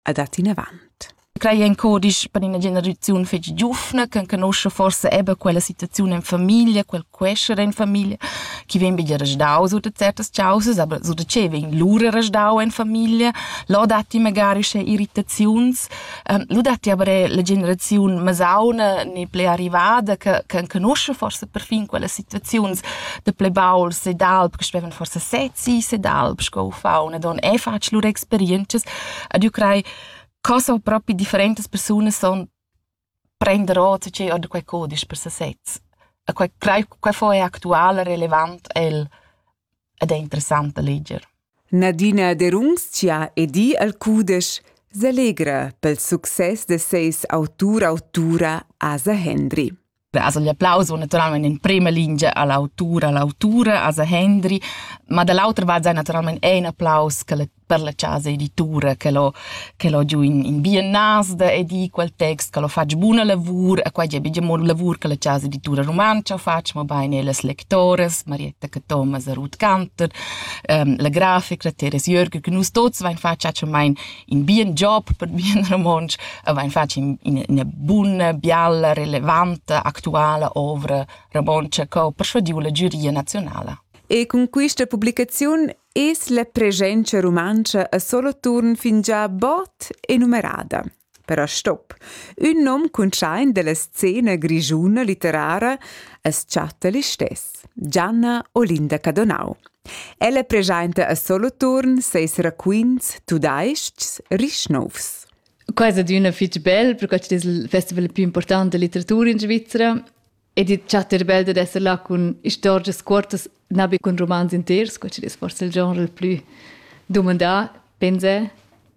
a dat inavant. Crei en codisch per ina generaziun fetg giuvna che conosce forse eben quella situazione in famiglia, quel quescere in famiglia, chi vem bi restau su de certas causes, aber so de ce vem lura restau in famiglia, lo datti magari sche irritaziuns, um, lo datti aber la generaziun masauna ne ple arrivada che che conosce forse perfin quella situaziuns de ple baul se d'alb che speven forse sezzi se d'alb sco fa una don e faccio lur experiences Ed io crei co son propi differentas persunas son prender ota tgei ord quei codisch per sesez. E quei, crei, quei fo è actual e relevant el ed è interessant da leger. Nadina Derunzia e di al cudesch selegra pel success de seis autur autura Asa Hendry. As agli applaus va naturalmein in prema lingia all'autura, all'autura, a Hendri, ma dall'autra va naturalmein ein applaus che per la casa editura che l'ho che l'ho giù in, in biennas da edì quel text che l'ho fatg buna lavur e qua è bigia mo lavur che la casa editura romanca faccia ma bene las lectores Marietta Cathomas e Ruth Cantor, ähm, la grafica Teres Jörger che nus tots vain fatg mai in bien job per bien romontsch avain fatg in, ina buna, bialla, relevanta, actuala ovra romontsch che ho persuadiu la giuria nazionala. E con questa pubblicazione es la presenza romanza a solo turn fingià bot e numerada. Però stop. Un nom cun schain della scena grigiuna litterara as chatta l'istesso. Gianna Olinda Cadonau. Ella preschainta a Soloturn seis raquints tudais-chs rich nouvs. Quai è adüna fich bel, perché es il festival più important da litteratura in Svizzera ed i chatta bel da esser là cun istorgias cuortas, na be cun romans inters, quai es forse il genre il plü dumandà, pensa.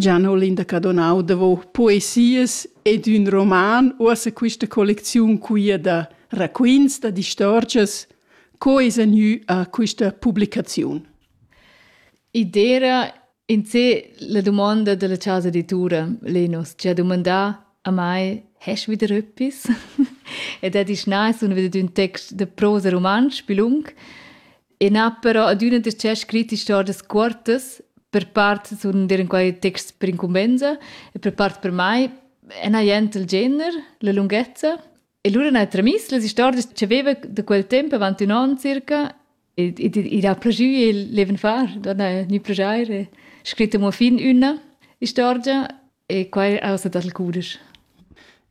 Gian Olinda Cadonau davò poesias ed ün roman, uossa quista collecziun quia da raquints, da distorgias, co esa gnü a quista publicaziun. I d'eira in sé la dumonda della chasa editura, Lenus, chi ha dumandà a mai, hast wieder etwas? ed ha disch, na, sun wieder ün text da prosa rumantsch, bilung. E n'ha però adüna darcheu scrit istorgias cuortas, per part sun dir in quai texts per incumbenza e per part per mai e n'ha jent il gener, la lunghezza. E lura n'ha tramiss las istorgias ch'aveva da quel temp avant ün on circa ed id ha plajü il leven far, da na gnü plajair e scrit amo fin üna istorgia E quai ausa dal cudisch.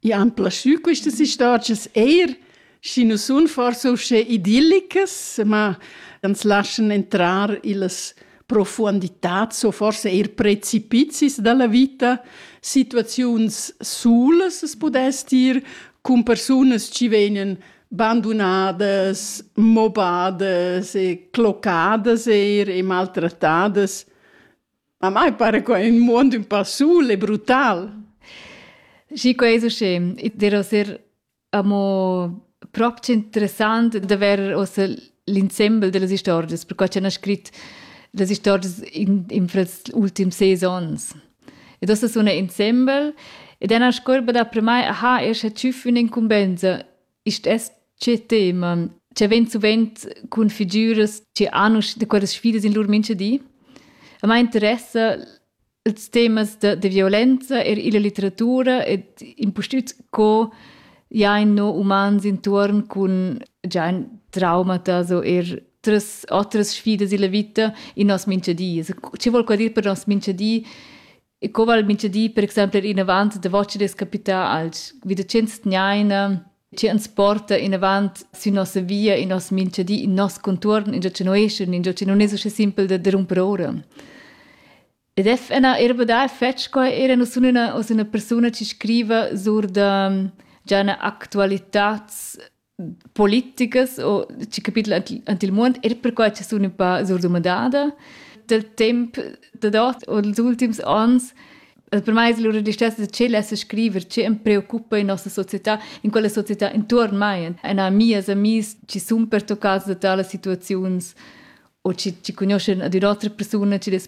I han plaschü quistas istorgias eir, schi nu sun forsa uschè idillicas, ma ans laschan entrar illas profuonditats o forsa eir precipizis da la vita, situaziuns sulas as pudess dir, cun persunas chi vegnan bandunadas, mobadas e clocadas eir e maltrattadas, Ma mai pare qua in muond ün pa sul e brutal. Schi quai es uschè. I dirò ser amo prop interessant d'avair uossa l'insembel da las istorgias, perquai ch'el n'ha scrit las istorgias in, in fras ultims ses ons. Ed uossa suna insembel ed ena scorba dapremai aha, eir scha tschüff ün'incumbenza Ist das che tema? Cioè vegn suvent cun figüras che hanno da quelle sfide in loro mente di. A me interessa ils temas de, de violenza e la letteratura ed impustüt co ja in no umans intorn con già ein traumata so er tres otras sfidas illa vita in nos minchedi. Also, ci vuol qual dir per nos minchedi E co val mintga di, per exempel, inavant davos des capità als wie de chins tgnaina che uns porta in avant su nossa via in nos mincha di in nos contuorn in già che noeschun in già che non es usche simpel da rumper ora. Ed è una erba da fetch qua era nus una os una persona ci scriva sur da già una actualitats politicas o chi capitla ant il muond eir perquai cha sun ün pa surdumandada dal temp dad ot o dals ultims ans per mai es lura distessa da tschel esser scriver che am preoccupa in nossa società, in quella società intuorn mai, na mias amis chi sun pertoccats da talas situaziuns o chi, chi cugnuoschan ad ün'otra persuna chi dess